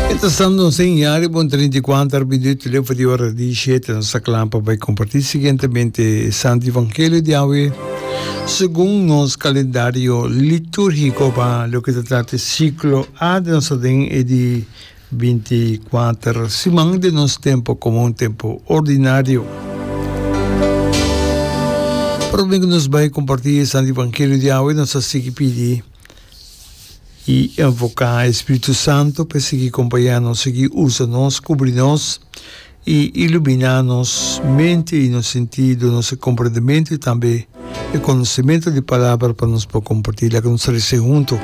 E ta stando un seña riba un treinta i kuater minuut lefo di ora di shete. Nos ta kla pa bai kompartí siguientemente e Santu Evangelio di awe segun nos kalendario litúrgiko, pa loke ta trata e siklo A den nos aden, e di binti i kuater siman den nos tempu komun, tempu ordinario. Promé ku nos bai kompartí e Santu Evangelio di awe, nos ta sigui pidi. i invoká e Spiritu Santu pa e sigui kompañá nos, sigui usa nos, kubri nos i iluminá nos mente i nos sentido, nos komprendementu i tambe e konosementu di Palabra pa nos por kompartí. Laga nos rese huntu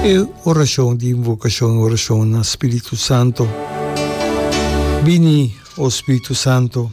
e orashon di invokashon, e orashon na Spiritu Santu. Bini, o Spiritu Santu.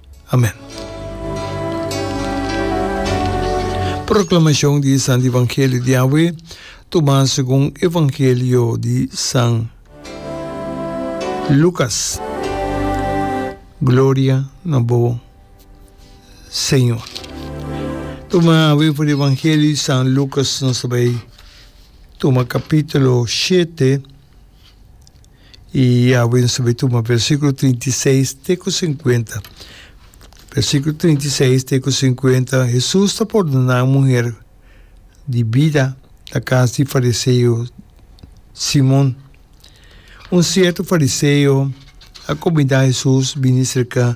Amen. Proclamacion di e Santi Evangelio di awe, tuma segun Evangelio di San Lucas. Gloria na bo, Señor. Tuma awe for di Evangelio di San Lucas, nos tabei tuma capitulo shete, I a wens ta bai tuma versíkulo trinta i seis te ku sinkuenta. Versíkulo trinta i seis te ku sinkuenta, Hesus ta pordoná un muher di bida na kas di fariseo Simon. Un sierto fariseo a komindá Hesus bini serka